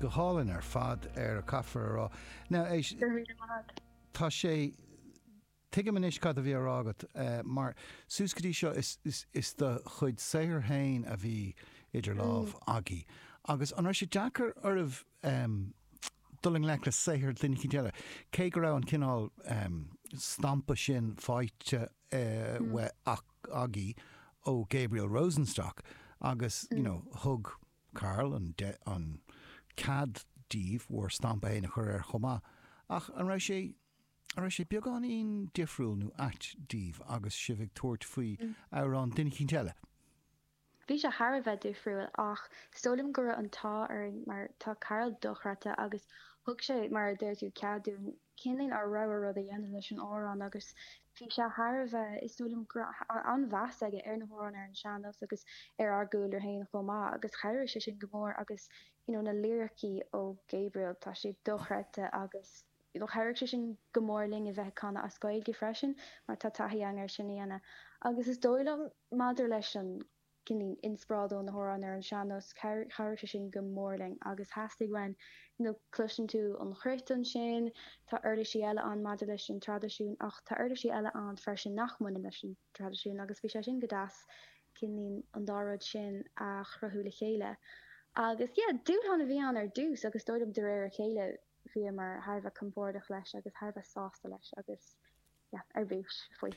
Go hálainn ar fad, a chaithfear a rá. Now, éist, tá sé, tuigim anois cad a bhí á rá agat, mar suas go dtí seo is, is, is do chuid saothair féin a bhí idir lámha agaibh agus an raibh sé deacair oraibh em dul i ngleic le saothar duine éicínt eile, cé go raibh an cineál em stampa sin faighte eh agaibh ó Gabriel Rosenstock agus you know thug Karl an an cead daoibh bhur stampa fhéin a chur air chomh maith ach an raibh sé an raibh sé beagáinín difriúil nó ait daoibh agus sibh ag tabhairt faoi amhrán duine eicínt eile? Bhí sé thar a bheith difriúil ach is dóigh liom go raibh an t-ádh orainn mar tá Karl dochreidte agus thug sé, mar a deir tú, cead dúinn cineál ár rogha rud a dhéanamh leis an amhrán agus bhí sé thar a bheith, is dóigh liom go raibh an-mheas aige ar na hamhráin, ar an sean-nós agus ar ár gcúlra féin chomh maith agus chabhraigh sé sin go mór agus you know na liricí ó Gabriel, tá siad dochreidte agus. Chabhraigh sé sin go mór linn a bheith ag canadh as Gaeilge freisin mar tá taithí againn air sin a dhéanamh. Agus is dóigh liom maidir leis an inspioráid ó na hamhráin ar an sean-nós, chabhraigh sé sin go mór linn agus theastaigh uainn, you know, cloiseann tú an chruit ansin, tá uirlisí eile ann maidir leis an traidisiún ach tá uirlisí eile ann freisin nach mbaineann leis an traidisiún agus bhí sé sin go deas an dá rud sin a chruthú le chéile. Agus yeah, dúshlán a bhí ann ar dtús ach is dóigh liom de réir a chéile, bhíomar thar a bheith compórdach leis agus thar a bheith sásta leis agus yeah ar bís faoi.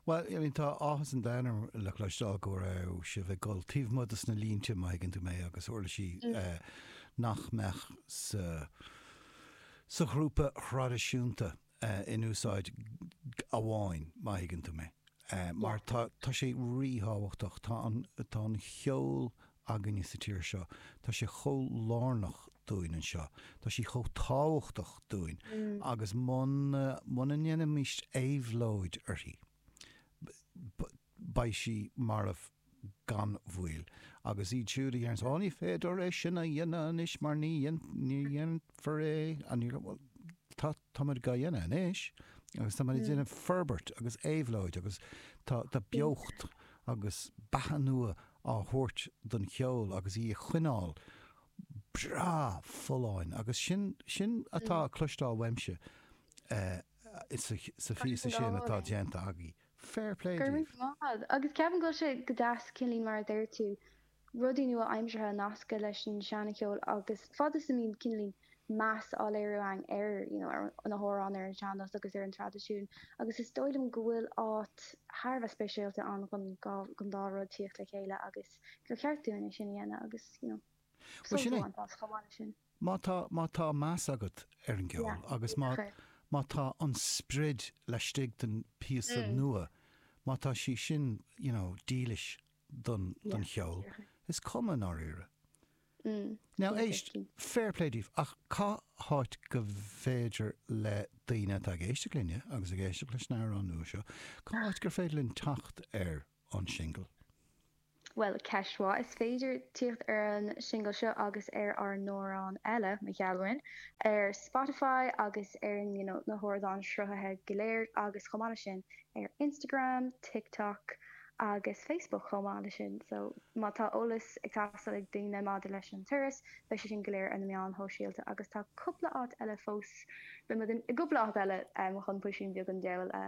Bhuel, I mean tá áthas an domhain orm a chloisteáil go raibh sibh ag dul taobh amuigh dos na línte, má thuigeann tú mé, agus uirlisí nach mbeadh sa ghrúpa thraidisiúnta. in úsáid agaibh má thuigeann tú mé. Mar tá sé ríthábhachtach. Tá tá an ceol againne sa tír seo. Tá sé chomh lárnach dúinn anseo. Tá sí chomh tábhachtach dúinn agus muna muna ndéanfaimís éabhlóid uirthi beidh sí marbh gan mhoill. Agus iad siúd a déarfas, Ó ní féidir é sin a dhéanamh anois mar ní dhéantar é anoir, bhuel tá, táimid dhá dhéanamh anois agus táimid ag déanamh forbairt agus éabhlóid agus tá beocht agus beatha nua á thabhairt don cheol agus í a choinneáil breá folláin agus sin, sin atá á chloisteáil uaimse sa phíosa sin atá déanta agaibh. Fair play Go raibh daoibh. maith. Agus ceapaim go bhfuil sé go deas, cineáilín, mar a deir tú, rudaí nua-aimseartha a nascadh leis an seana-cheol agus fad is a mbíonn, cineáilín, meas á léiriú againn ar, you know, ar na hamhráin, ar an sean-nós agus ar an traidisiún. Agus is dóigh liom go bhfuil áit thar a bheith speisialta ann dhon dhá, dhon dá rud tíocht le chéile agus gur cheart dúinn é sin a dhéanamh agus, you know, Bhuel, sult a sin é. bhaint as chomh maith le sin. Má tá, má tá meas agat ar an gceol agus má, má tá an sprid laistigh den phíosa nua, má tá sí sin, you know, dílis don, don cheol, is cuma i ndáiríre. Now éist, fair play daoibh ach cá háit go féidir le daoine atá ag éisteacht linne agus ag éisteacht leis na h-amhráin nua seo, cá háit gur féidir linn teacht ar an singil. Bhuel, ceist mhaith. Is féidir tíocht ar an singil seo agus ar ár n-amhráin eile, mo gheallúin, ar Spotify agus ar you know na hardáin sruthaithe go léir agus chomh maith le sin ar Instagram, TikTok agus Facebook chomh maith le sin. So má tá eolas ag teastáil ag daoine maidir leis an turas beidh sé sin go léir ar na meáin shóisialta agus tá cupla áit eile fós beimid in i gcupla áit eile chun puisín beag an deabhail a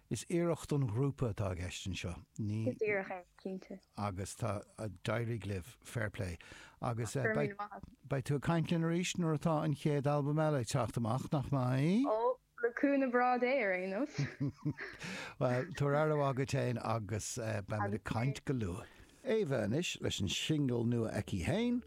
Is iarracht don ghrúpa atá i gceist anseo. Ní. Is iarracht é, cinnte. Agus tá. D'éirigh libh. Fair play. Agus Go raibh míle maith agat. beidh tú ag caint linn arís nuair atá an chéad albam eile ag teacht amach, nach mbeidh? Ó, le cúnamh Dé ar aon nós. Bhuel, tabhair aire mhaith duit féin agus beimid ag Agus caint go luath. Éabha anois leis an singil nua aici féin,